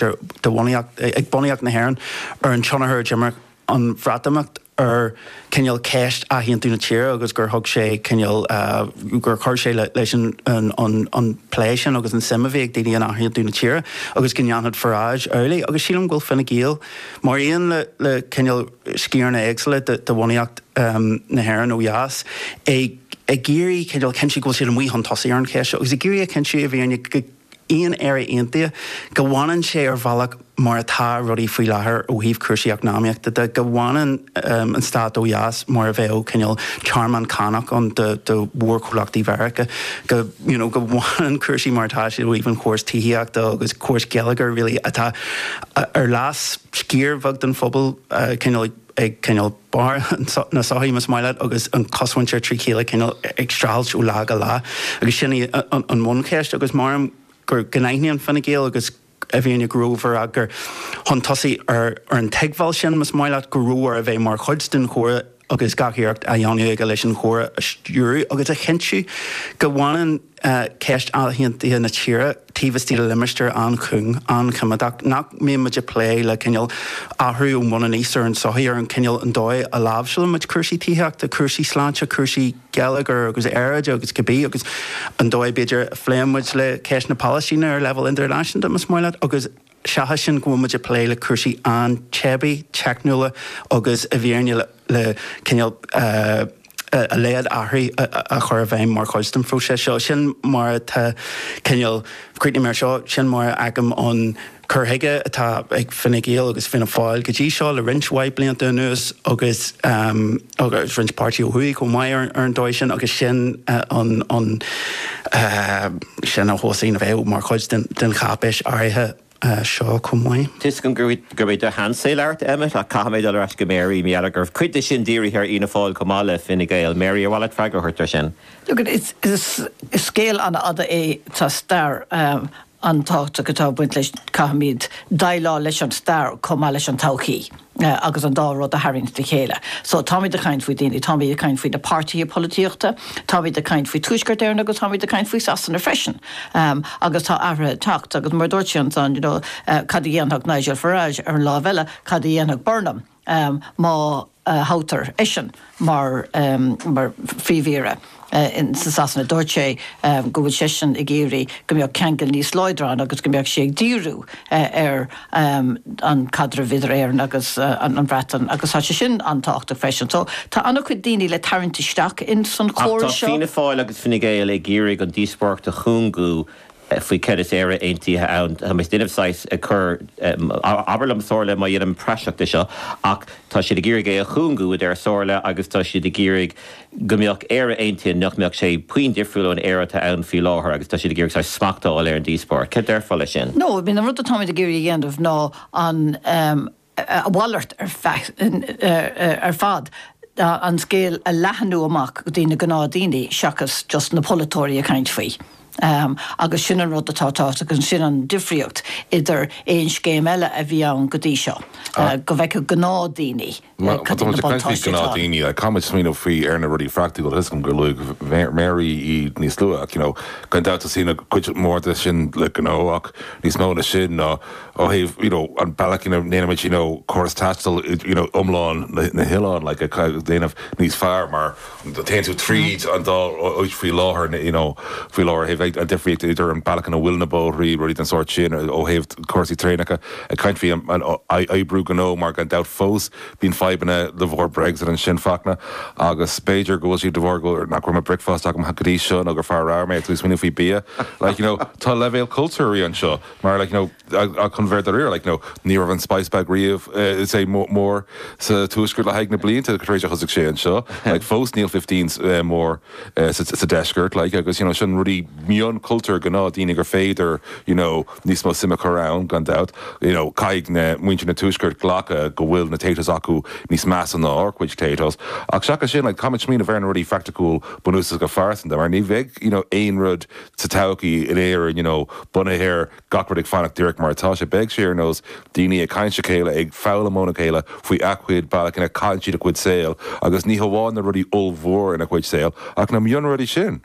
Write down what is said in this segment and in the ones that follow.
ag bunaíocht na hÉireann ar an tionchar a d'imir an Bhreatimeacht ar cineál ceist athaontú na tíre agus gur thug sé cineál, gur chuir sé leis an plé sin agus an suim a bhí ag daoine in athaontú na tíre agus go ndéanfadh Farage amhlaidh agus sílim go bhfuil Fine Gael, mar aon le cineál sciaranna éagsúla de bhunaíocht na hÉireann ó dheas, ag iarraidh cineál cinntiú go bhfuil siad amuigh chun tosaigh ar an cheist seo agus ag iarraidh a chinntiú i bhfírinne go aon Éire aontaithe, go bhfanann sé ar bhealach mar atá rudaí faoi láthair ó thaobh cúrsaí eacnamaíochta de, go bhfanann an stát ó dheas mar a bheadh cineál tearmann cánach ann do mhórchomhlachtaí Mheiriceá, go you know go bhfanann cúrsaí mar atá siad ó thaobh an chóras tithíochta agus córas geilleagair really atá ar leas sciar bheag den phobal cineál ag cineál barr na sochaí, más maith leat, agus an chosmhuintir fríd chéile cineál ag streachailt ó lá go lá agus sin í an bhuncheist agus measaim gur go n-aithníonn Fine Gael agus i bhfírinne go mb'fhearr a gcur chun tosaigh ar an dteagmháil sin, más maith leat, go mb'fhearr a bheith mar chuid den chomhrá agus gach iarracht a dhéanamh acu leis an chomhrá a stiúradh agus a chinntiú go bhfanann ceist athaontaithe na tíre taobh istigh de limistéar an-chúng, an-choimeádach, nach mbíonn muid ag plé le cineál athrú ón bhun aníos ar an sochaí, ar an chineál, an dóigh a láimhseálann muid cúrsaí tithíochta, cúrsaí sláinte, cúrsaí geilleagair agus aeráide agus cibé agus an dóigh, b'fhéidir, a phléann muid le ceist na Palaistíne ar leibhéal idirnáisiúnta, más maith leat, agus. Seachas sin, go bhfuil muid ag plé le cúrsaí an-teibí, teicniúla agus i bhfírinne le cineál a laghad athraithe a chur i bhfeidhm mar chuid den phróiseas seo. Sin mar atá cineál, críochnóidh mé ar seo, sin mar a fheicim an cur chuige atá ag Fine Gael agus Fianna Fáil go dtí seo le roinnt mhaith blianta anuas agus agus roinnt páirtí ó thuaidh chomh maith ar an dóigh sin agus sin an sin an tuiscint a bheidh mar chuid den cháipéis áirithe seo chomh maith. Tiocfaidh mé go dtí do cheansa ar ball Emmet ach caithfimid dul ar ais go Mary. mar gheall go raibh cuid de sin dírithe ar Fhianna Fáil chomh maith le Fine Gael. Mary, ar mhaith leat freagra a thabhairt air sin? Is scéal an-fhada é tá stair an-tábhachtach atá ag baint leis. Caithfimid déileáil leis an stair chomh maith leis an todhchaí. agus an dá rud a tharraingt le chéile. So táimid ag caint faoi daoine, táimid ag caint faoi na páirtithe polaitíochta, táimid ag caint faoi Tuaisceart Éireann agus táimid ag caint faoi Sasana freisin. Agus tá athruithe ag teacht agus mar a dúirt sé ansan, you know, cad a dhéanfadh Nigel Farage, ar an láimh eile, cad a dhéanfadh Burnham má thoghtar eisean? mar Phríomh-Aire i Sasana, dúirt sé go bhfuil seisean ag iarraidh go mbeadh ceangal níos láidre ann agus go mbeadh sé ag díriú ar an chaidreamh idir Éirinn agus an Bhreatain agus tá sé sin an-tábhachtach freisin. So tá an-chuid daoine le tarraingt isteach in san chomhrá seo. Ach tá Fianna Fáil agus Fine Gael ag iarraidh an díospóireacht a chúngú faoi céard is Éire Aontaithe ann. Táimse ag déanamh saghas ag cur, abair liom Somhairle má dhéanaim praiseach de seo ach tá siad ag iarraidh é a chúngú, a deir Somhairle agus tá siad ag iarraidh go mbeadh Éire Aontaithe nach mbeadh sé puinn difriúil ón Éire atá ann faoi láthair agus tá siad ag iarraidh saghas smacht a fháil ar an díospóireacht. Céard déarfá leis sin? No, I mean an rud atáimid ag iarraidh a dhéanamh ná an. a mhalairt ar fad, an scéal a leathnú amach go dtí na gnáthdhaoine seachas just na polaiteoirí ag caint faoi. Agus sin an rud atá tábhachtach agus sin an difríocht idir aon scéim eile a bhí ann go dtí seo, go bhfeicfeadh gnáthdhaoine cad iad na buntáistí atá ann. Caithfidh muid smaoineamh faoi ar na rudaí phraicticiúla is fios agam gur luaigh Mary iad níos luaithe, gan dabht tá cuid mhór de sin le gnó ach níos mó ná sin ná, ó thaobh you know an bealach ina ndéanaimid you know córas taistil you know iomlán na hoileáin like a dhéanamh níos fearr mar téann tú tríd an dá áit faoi láthair you know faoi láthair féach ar an difríocht idir an bealach ina bhfuil na bóithre rudaí den sórt sin ó thaobh cúrsaí traenacha ag caint faoi comhoibriú gnó mar gan dabht fós bíonn fadhbanna de bharr Brexit ansin Fachtna agus b'fhéidir go bhfuil sé de bharr go nach raibh breakfast agam go dtí seo nó gur fear ramhar mé atá ag smaoineamh faoi bia like you know tá leibhéal cultúir anseo Mar, like, you know, chun a bheith dáiríre, like, you know, ní raibh an spice bag riamh, eh, chomh mór, mór sa Tuaisceart le haghaidh na blianta tar éis a thosaigh sé anseo. Like, fós níl fifteen's, eh, mór, eh, sa, sa Deisceart, like, agus, you know, sin rudaí mionchultúir gnáthdhaoine gur féidir, you know, níos mó suime a chur ann, gan dabht. You know, caithfidh na, muintir na Tuaisceart glacadh go bhfuil na Taytos acu níos measa ná ár gcuid Taytos. Ach seachas sin, like, táimid ag smaoineamh ar na rudaí phraiticiúil bunúsach go pearsanta, mar ní bheidh, you know, aon rud sa todhchaí in Éirinn you know bunaithe ar gach rud ag fanacht díreach mar atá sé. Beidh sé ar nós daoine ag caint le chéile, ag foghlaim óna chéile faoina gcuid bealach ina caitheann siad a gcuid saol agus ní hamháin na rudaí ollmhóra ina gcuid saol ach na mionrudaí sin.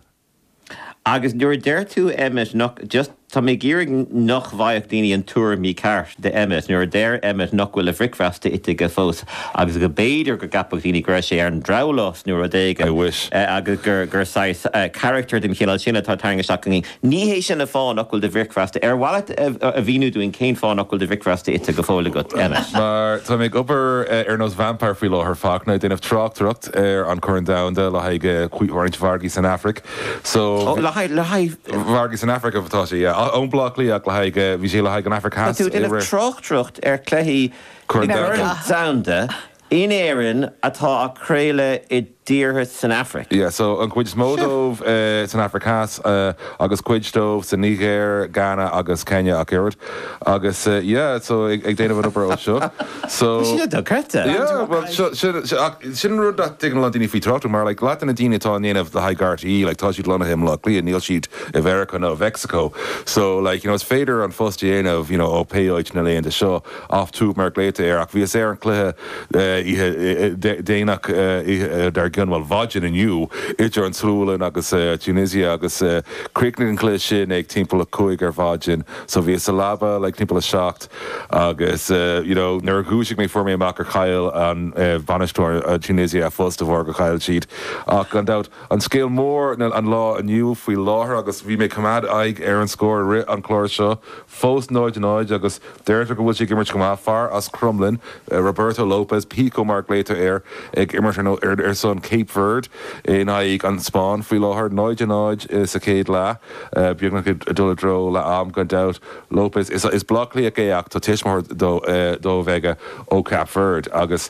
Agus nuair a deir tú Emmet, just, tá mé ag iarraidh nach bhfaigheadh daoine an tuairim mícheart. de Emmet. Nuair a deir Emmet nach bhfuil a bhricfeasta ite aige fós agus go mb'fhéidir go gceapfadh daoine go raibh sé ar an drabhlás nó rud éigin, I wish. agus gur saghas carachtair den chineál sin atá á tharraingt isteach againn, ní hé sin an fáth nach bhfuil do bhricfeasta. Ar mhaith leat a mhíniú dúinn cén fáth nach bhfuil do bhricfeasta ite go fóill agat, Emmet? Mar táim ag obair ar nós vampire faoi láthair, Fachtna, ag déanamh tráchtaireacht ar an Chorn Domhanda le haghaidh roinnt margaí san Afraic, so bhí. Oh, le haghaidh, le haghaidh margaí san Afraic atá sé. I mBleá Cliath ach le haghaidh, bhí sé le haghaidh an Afraic. Tá tú ag déanamh tráchtaireacht ar chluichí Corn Domhanda. Corn Domhanda in Éirinn atá á chraoladh i dtíortha san Afraic. Yeah so an chuid is mó dóibh san Afraic Theas agus cuid dóibh sa Nigéir, Ghana agus Kenya ach oiread. Agus yeah so ag déanamh an obair seo. Tá sé dochreidte. Yeah bhuel sin sin ach sin rud nach dtuigeann an-lán daoine faoi tráchtaireacht mar like leath de na daoine atá á dhéanamh le haghaidh RTÉ like tá siad lonnaithe i mBleá Cliath, níl siad i Mheiriceá nó i Mheicsiceo. So like you know is féidir an phost a dhéanamh you know ó pé áit na laethanta seo off tube mar a glaotar air ach bhíos ar an chluiche oíche Dé Domhnaigh oíche dár gcionn bhuel maidin inniu idir an tSualainn agus Tunisia agus Chríochnaigh an cluiche sin ag timpeall a cúig ar maidin so bhíos sa leaba like timpeall a seacht agus you know nuair a dhúisigh mé fuair mé amach gur chaill bainisteoir Tunisia a phost de bharr gur chaill siad ach gan dabht an scéal mór an lá inniu faoi láthair agus bhí mé ag coimeád aghaidh ar an scór i rith an chlár seo fós 0 0 agus deirtear go bhfuil sé ag imirt go maith. Fear as Crumlin, Roberto Lopes, Pico mar a glaotar air, ag imirt ar son Cape Verde in aghaidh an Spáinn faoi láthair. 0 0 sa chéad leath. Beagnach ag dul i dtreo leath am gan dabht. Lopes, is Bleácliathach é ach tá tuismitheoir dó a bheidh aige ó Cape Verde agus.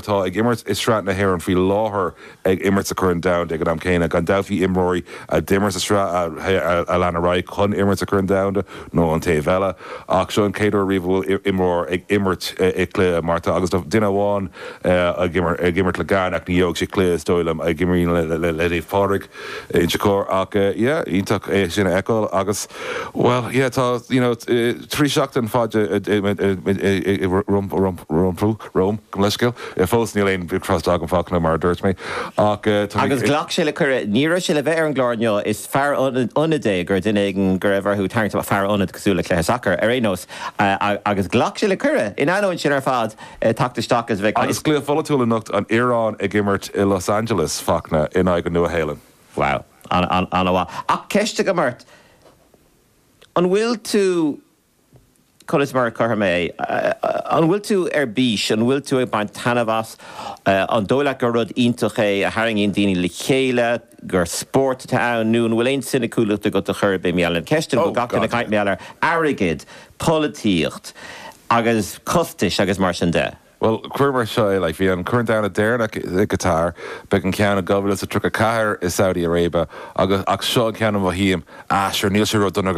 atá ag imirt i Sraith na hÉireann faoi láthair ag imirt sa Chorn Domhanda ag an am céanna. Gan dabht bhí imreoirí a d'imir sa Sraith a lean ar aghaidh chun imirt sa Chorn Domhanda nó an taobh eile ach seo an chéad uair riamh a bhfuil imreoir ag imirt i cluiche mar atá agus duine amháin ag imirt le Ghana ach ní gheobhaidh sé cluiche is dóigh liom a imríonn le Pádraig. Inse Chór ach yeah, iontach é sin a fheiceáil agus bhuel yeah tá you know trí sheachtain faide rompu, romham, gabh mo leithscéal, fós níl aon breac-Ghaeilge agam Fachtna mar a dúirt mé ach agus ghlac sé le cuireadh. Ní raibh sé le bheith ar an gclár inniu, is fear ionaid é, do dhuine éigin go raibh orthu tarraingt amach, fear ionaid cosúil le cluiche sacair ar aon nós, agus ghlac sé le cuireadh in ainneoin sin ar fad. ag teacht isteach is a bheith. Agus cluiche polaitiúil anocht, an Iaráin ag imirt i Los Angeles, Fachtna, in aghaidh an Nua-Shéalainn. Wow. An-mhaith. Ach ceist agam ort, an bhfuil tú, conas mar a chuirfidh mé é, an bhfuil tú ar bís, an bhfuil tú ag baint taitneamh as, an dóigh leat gur rud iontach é a tharraingíonn daoine le chéile, gur spórt atá ann, nó an bhfuil aon soiniciúlacht agat de bharr na mílte ceisteanna atá ag teacht sa chaint maidir le hairgead. polaitíocht agus costais agus mar sin de. Bhuel, cuir mar seo é, like, bhí an Corn Domhanda deireanach i gCatar, beidh an ceann i dhá mhíle is a 34 i Saudi Arabia, agus ach seo an ceann a mhothaím, ah, sure, níl sé ródhona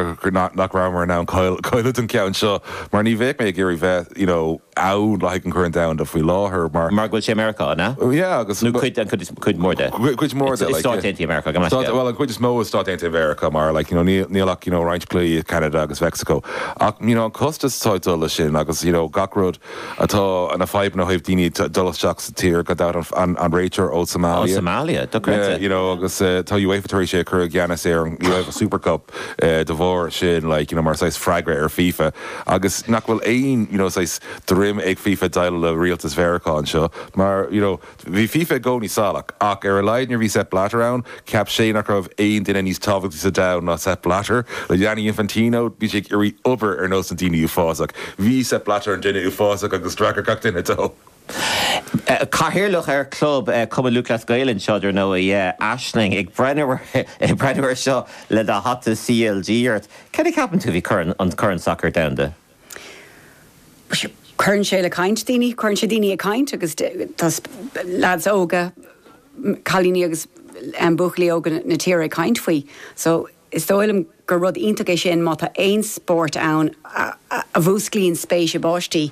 nach rabhamar in ann cáiliú don cheann seo, mar ní bheadh mé ag iarraidh bheith, you know, eadh le haghaidh an Choirn Domhanda faoi láthair mar. Mar go bhfuil sé i Meiriceá, an ea? Yeah, agus. Nó cuid, an cuid is, cuid mhór de. Cuid mhór de, like. I Stáit Aontaithe Mheiriceá, gan mhaith. Bhuel, an chuid is mó i Stáit Aontaithe Mheiriceá mar, like, you know, níl, níl ach, you know, roinnt cluichí i Ceanada agus Meicsiceo. Ach, you know, an costas atá ag dul leis sin agus, you know, gach rud atá, na fadhbanna ó thaobh daoine ag dul isteach sa tír, gan dabht an, an, an réiteoir ó Somalia. Ó Somalia, dochreidte. Yeah, you know, agus eh, tá UEFA tar éis é a chur i gceannas ar an UEFA Super Cup eh, de bharr sin, like, you know, mar saghas freagra ar FIFA. Agus nach bhfuil aon, you know, saghas droim ag FIFA déileáil le rialtas Mheiriceá anseo mar, you know, bhí FIFA i gcónaí salach ach ar a laghad nuair a bhí Sepp Blatter ann, cheap sé nach raibh aon duine níos tábhachtaí sa domhan ná Sepp Blatter. Le Gianni Infantino, bhí sé ag iarraidh obair ar nós na daoine uafásach. Bhí Sepp Blatter an duine uafásach agus d'fhreagair gach duine dó. Cathaoirleach ar Chlub, Cumann Lúthchleas Gael anseo, dar ndóigh. Aisling, ag breathnú air seo le do hata CLG ort, céard a cheapann tú faoi Chorn, an Corn Sacair Domhanda? Cuireann sé le caint daoine, cuireann sé daoine ag caint agus tá leaids óga, cailíní agus buachaillí óga na tíre ag caint faoi so is dóigh liom gur rud iontach é sin má tá aon spórt ann a mhúsclaíonn spéis i bpáistí.